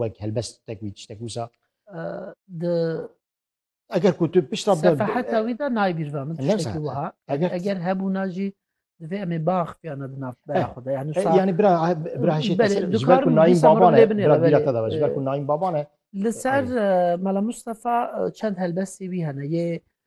wek helbestek wî tiştek wisa eger ku tu pişta heta wî de naybîrva min tiştekî wiha eger hebûna jî divê em ê bax piyana di nav bera eh, xwe yani eh, yani bira eh, bira hişê ji ber ku nayîn baban e bira bîra te de ji ber ku nayîn baban e li ser mela Mustafa çend helbestê wî hene yê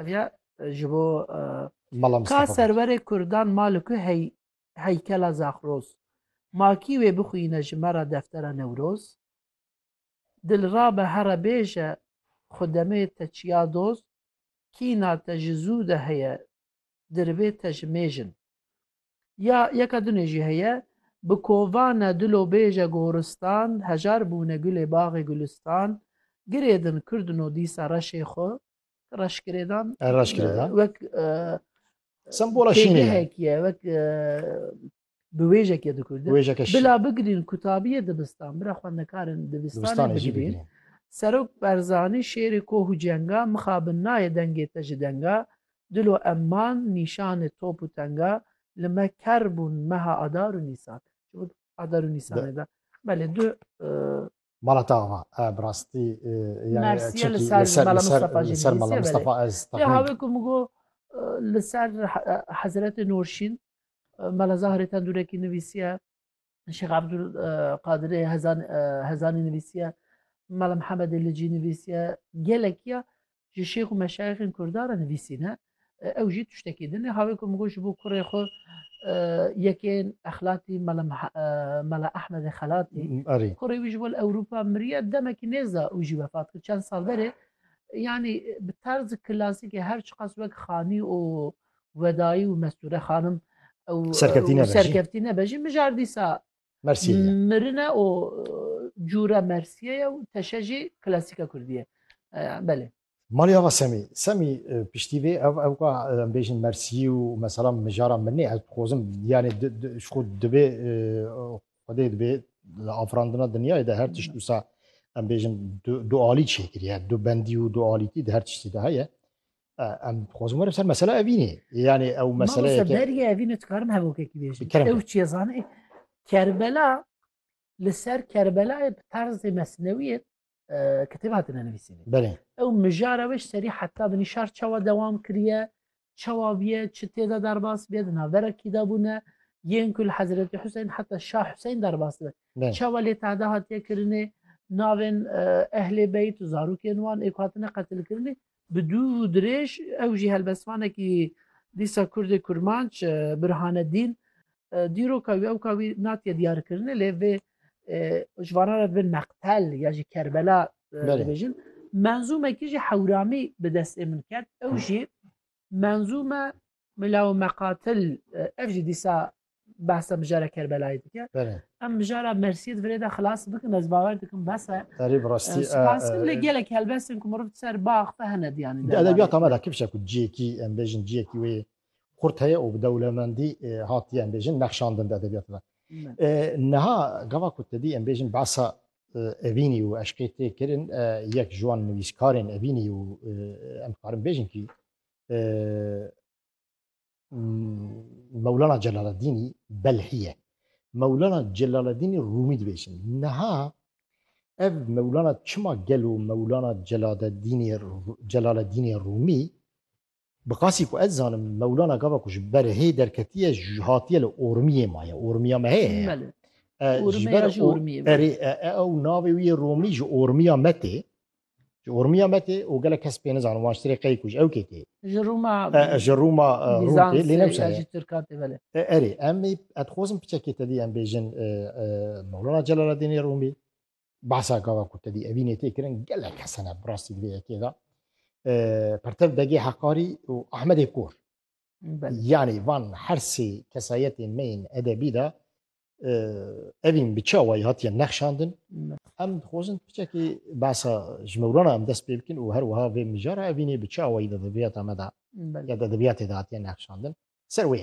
Ev ya ji bo Mala ka Mistefa Beg. serverê kurdan ma li ku hey heykela Zaxroz? Ma kî wê bixwîne ji me re deftera Newroz? Dilrabe here bêje xwe demê te çiya doz, kîna te ji zû de heye dirivê te ji mêjin. Ya yeka dunê jî heye, Bi kovane dilo bêje goristan, hejar bûne gulê baxê gulistan, girêdin kirdino dîsa reşê xwe, reşgirêdan wek têgehek ye, wek biwêjek ye dikurdin. Bila bigirîn kutabiyê dibistan, bira xwendekarên dibistanê bigirîn. Serok Berzanî şêrê koh û cenga, mixabin nayê dengê te ji denga, Dilo em man nîşanê top û tenga li me ker bûn meha adar û nîsan. Çimik adar û nîsanê de belê du Mala te ava e bi rastî yani çekî li ser li ser li ser mala Mistefa ez taxmin. Lê havê ku min got li ser Hezretê Nurşîn mala Zahrê tendurekî nivîsiye Şêx Abdul Qadirê Hezan Hezanî nivîsiye, Mala Mihemedê li cî nivîsiye, gelekiya ji şêx û meşayixên Kurdan re nivîsîne. Ew jî tiştekî din e. Havê ku min got ji bo kurê xwe yekên exlatî Mala Mala Ehmedê Xelatî kurê wî ji bo li Ewropa miriye demekî nêza û jî vefat kir çend sal berê. Yani bi terzi klasîkê her çiqas wek xanî û Wedayî û Mestûre xanim û Serkeftî nebe jî mijar dîsa mirin e û cûre mersiyê ye û teşe jî klasîka kurdî ye. Belê. Malê ava Semî. Semî piştî vê ev ew ka em bêjin mersiyî û mesela mijara mirinê ez dixwazim yanê ji xwe divê xwedê divê li afirandina dinyayê de her tişt wisa em bêjin du alî çêkiriye. Du bendî û du alîtî di her tiştî de heye. Em dixwazin werin ser mesela evînê. Yani ew meseleye ke... Beriye evînê dikarim hevokekî bêjin. Ew çiye zanê. Kerbela li ser Kerbelayê bi tarzê mesnewiyê kitêb hatine nivîsînê. Belê. Ew mijara wê ji serî heta bi nîşar çawa dewam kiriye, çawa biye, çi têda derbas biye, di navbera kî de bûne, yên ku li Hezretê Huseyn heta Şah Huseyn derbas dibe. Çawa lê tahda hatiye kirinê, navên ehlê beyt û zarokên wan ê ku hatine qetilkirinê, Bi dû û dirêj ew jî helbestvanekî dîsa Kurdê kurmanc Burhanedîn dîroka wî ewka wî natiye diyarkirinê lê vê ji vanan re divê Meqtel ya jî Kerbela dibêjin. Menzûmekî jî Hewramî bi destê min ket ew jî menzûme Mela û meqatil ev jî dîsa behsa mijara Kerbelayê dike. Em mijara Mersiyê di virêda xilas bikin ez bawer dikim bese. Erî bi rastî Spaskim lê gelek helbestên ku miriv ser bax ve hene diyanî. Di edebiyata me de kifşe ku ciyekî em bêjin ciyekî wê xurt heye û bi dewlemendî hatiye em bêjin nexşandin di edebiyata de. Niha gava ku tedî em bêjin behsa Evînî û eşqê tê kirin yek ji wan nivîskarên Evînî û em dikarin bêjin kî Mewlana Celaleddînî Belhî ye. Mewlana Celaleddînî Rûmî dibêjin. Niha ev Mewlana çima gelo Mewlana Celaleddînê Celaleddînê Rûmî bi qasî ku ez zanim Mewlana gava ku ji ber hê derketiye hatiye li Ormiyê maye. Ormiya me heye. Erê ew navê wî Rûmî ji Ormiya me tê. Ji ormiya me tê û gelek kes pê nizanin wan ji tirê qeyî ku ji ew kê tê. Ji Rûma Ji Rûma Rûm tê lê ne ya jî Tirka tê belê. Erê em ê ez dixwazim piçekê te dî em bêjin Mewlana Celaleddînê Rûmî behsa gava ku te dî evînê tê kirin gelek kes hene bi rastî di vê yekê de Pertev Begê Heqarî û Ahmedê Kor. Yanî van her sê kesayetên me yên edebî de evîn bi çawayî hatiye nexşandin. Em dixwazin piçekî behsa ji mewlana em dest pê bikin û her wiha vê mijara evînê bi çawayî de edebiyata me de ya edebiyatê de hatiye nexşandin. Ser wê